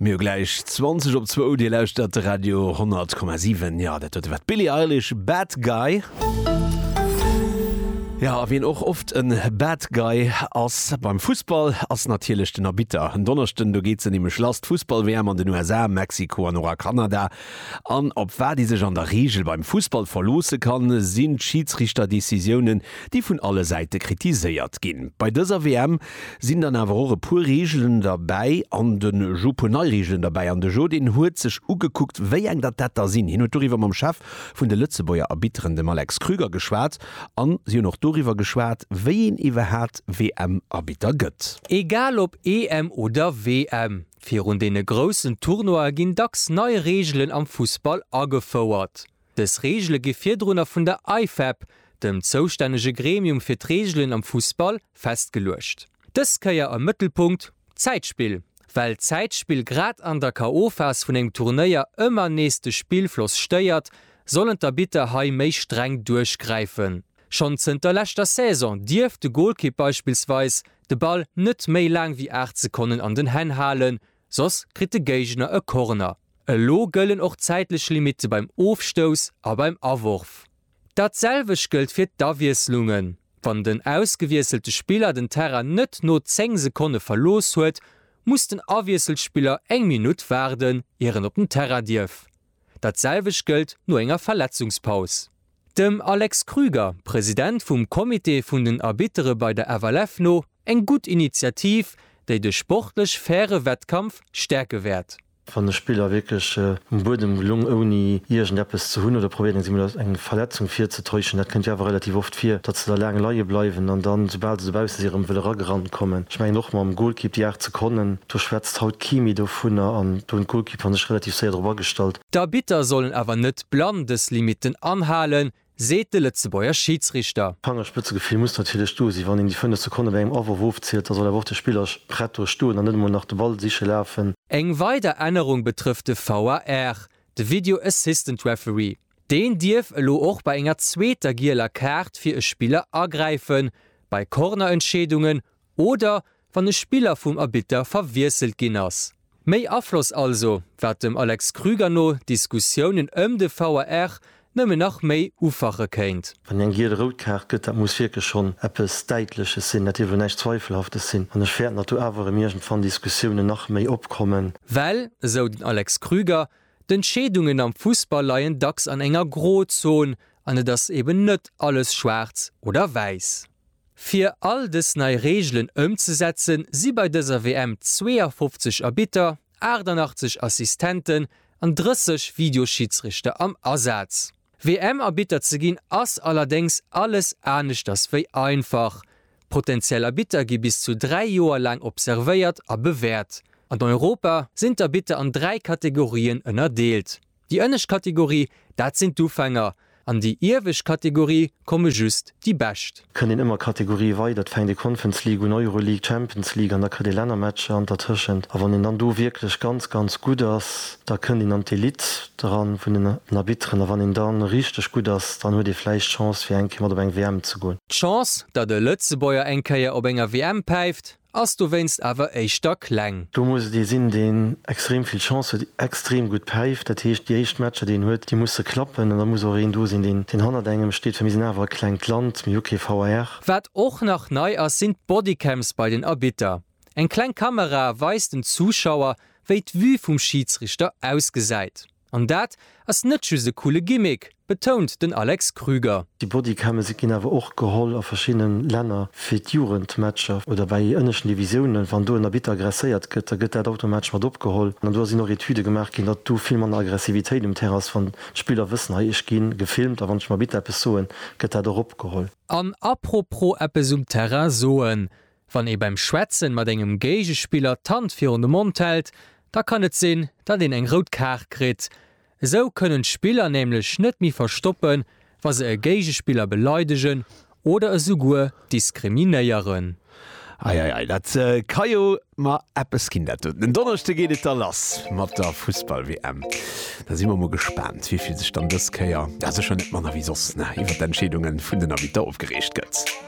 Mir hu gläich 20 op zwou. Dir lauschtert de Radio 100,7. Jo, dat war de wat d'Billie Eilish, Bad Guy. Jo, a wien och oft e Bad Guy ass beim Fussball, ass natierlech den Arbitter. En Donneschden, do geet se nämlech lass, d'Fussball-WM an den USA, Mexiko an och a Kanada. An op wat ee sech an der Reegel beim Fussball verloosse kann, sinn d'Schidsrichter-Decisiounen, déi vun alle Säite kritiséiert ginn. Bei dëser WM Sinn dann awer och e puer Reegelen derbäi an de Jo, puer nei Reegelen derbäi an de Jo, deen huet sech ugekuckt, wéi eng datt dat da sinn. Hien huet doriwwer mam Chef vun de Lëtzebuerger Arbitteren, dem Alex Krüger, geschwat an si hunn och doriwwer geschwat, wéi een iwwerhaat WM-Arbitter gëtt. Egal op EM oder WM, virun deene groussen Tournoie ginn dacks nei Reegelen am Fussball agefouert. Dës Reegele gi virdrunner vun der IFAB, dem zoustännege Gremium fir d'Reegelen am Fussball, festgeluecht. Dës Kéier am Mëttelpunkt d'Zäitspill. Well d'Zäitspill grad an der KO-Phas vun engem Turnéier ëmmer nees de Spillfloss stéiert, sollen d'Arbitter hei méi streng duerchgräifen. Schonn zënter leschter Saison dierf de Golkipp beispillsweis de Ball net méi laang wéi 8 Sekonnen an den Hänn halen, soss kritt de Géigner e Corner. Elo gëllen och zäitlech Limitte beim Ofstouss a beim Aworf. Dat selwecht gëllt fir d'Awiesslungen, wann den ausgewiesselte Spiller den Terrain net no 10 Sekonne verlooss huet, muss den Awiesselspiller eng Minutt waarden, ier en op den Terrain dierf. Dat selwecht gëllt no enger Verletzungspaus. Dem Alex Krüger, President vum Comité vun den Arbittere bei der FLF no, eng gutt Initiativ, déi de sportlech faire Wettkampf stäerke wäert. Wann de Spiller wierklech um Buedem gelung ouni iergend eppes ze hunn oder probéiert eng Verletzung virzetäuschen, dat kënnt jo awer relativ oft vir, datt se da laang leie bleiwen an dann, soubal se dobausse si, erëm wëll eragerannt kommen. Ech mengen och mam Golkipp déi 8 Sekonnen, do schwätzt haut kee méi dovunner an do hunn Et kann sech relativ séier drop agestallt. D'Arbitter sollen awer net blann dës Limitten anhalen, seet de Lëtzebuerger Schiidsrichter. D'Fangerspëtzegefill muss natierlech do sinn. Wann een déi fënnef Sekonne bei engem Awworf ofzielt, da soll awer och de Spiller prett do stoen an net emol nach de Ball siche lafen. Eng weider Ännerung betrëfft de VAR, de Video Assistant Referee. Deen dierf elo och bei enger zweeter gieler Kaart fir e Spiller agräifen, bei Cornerentscheedungen oder wann e Spiller vum Arbitter verwiesselt ginn ass. Méi Afloss also, wat dem Alex Krüger no d'Diskussiounen ëm de VAR nëmmen nach méi ufache kéint. Wann een eng giel-rout Kaart gëtt, dat muss wierklech schonn eppes Däitleches sinn, dat dierf elo näischt Zweifelhaftes sinn, an ech fäerten, datt do awer erëm iergendwann Diskussiounen nach méi opkommen. Well, esou den Alex Krüger, d'Entscheedungen am Fussball leien dacks an enger Grozon an et ass eben net alles schwaarz oder wäiss. Fir all dës nei Reegelen ëmzesetzen, si bei dëser WM 52 Arbitter, 88 Assistenten an 30 Videoschidsrichter am Asaz. WM-Arbitter ze ginn ass allerdéngs alles aneschters wéi einfach. Potentiell Arbitter gi bis zu dräi Joer laang observéiert a bewäert. An Europa sinn d'Arbitter an dräi Kategorien ënnerdeelt. Déi ënnescht Kategorie, dat sinn d'Ufänger. An déi iewescht Kategorie komme just déi Bescht. Kënnt een ëmmer Kategorië weider, et fänkt ee Conference League un, Euroleague, Champions League an da kritt ee Lännermatcher an dertëschent. A wann een dann do wierklech ganz, ganz gutt ass, da kënnt een an d'Elite eran vun den Arbitteren. A wann een da richteg gutt ass, dann huet ee vläicht d'Chance fir eng Kéier mat op eng WM ze goen. D'Chance, datt e Lëtzebuerger eng Kéier op enger WM päift? Ass dowéinst awer éischter kleng. Do muss et ee sinn, deen extrem vill Chance huet, extrem gutt päift. Dat heescht, déi éischt Matcher, déi en huet, déi musse klappen. An da muss och een do sinn, deen deen hannert engem steet, well mir sinn awer e klengt Land, mir hu kee VAR. Wat och nach nei ass, sinn d'Bodycams bei den Arbitter. Eng kleng Kamera weist den Zuschauer, wéi d'Vue vum Schiedsrichter ausgesäit. An dat ass net just e coole Gimmick, betount den Alex Krüger. Déi Bodycams ginn awer och geholl a verschiddene Länner fir d'Jugendmatcher oder bei ënneschten Divisiounen. Wann do en Arbitter aggresséiert gëtt, da gëtt dat automatesch mat opgeholl. An do sinn och Etüde gemaach ginn, datt do vill manner Aggressivitéit um Terrain ass, wann d'Spiller wëssen, hei, ech gi gefilmt a wann ech dem Arbitter eppes soen, gëtt dat och opgeholl. An apropos eppes um Terrain soen, Wann ee beim Schwätzen mat engem Géigespiller d'Hand virun de Mond hält, da kann et sinn, datt een eng rout Kaart kritt. Esou kënnen d'Spiller nämlech net méi verstoppen, wa se e Géigespiller beleidegen oder esouguer diskriminéieren. Ei, ei, ei, dat ka jo mar eppes ginn dat do. Den Donneschde geet et da lass mat der Fussball-WM. Da si mer mol gespaant, wéi vill sech dann dës Kéier, a sécher net manner wéi soss, iwwert d'Entscheedunge vun den Arbitter opgereegt gëtt.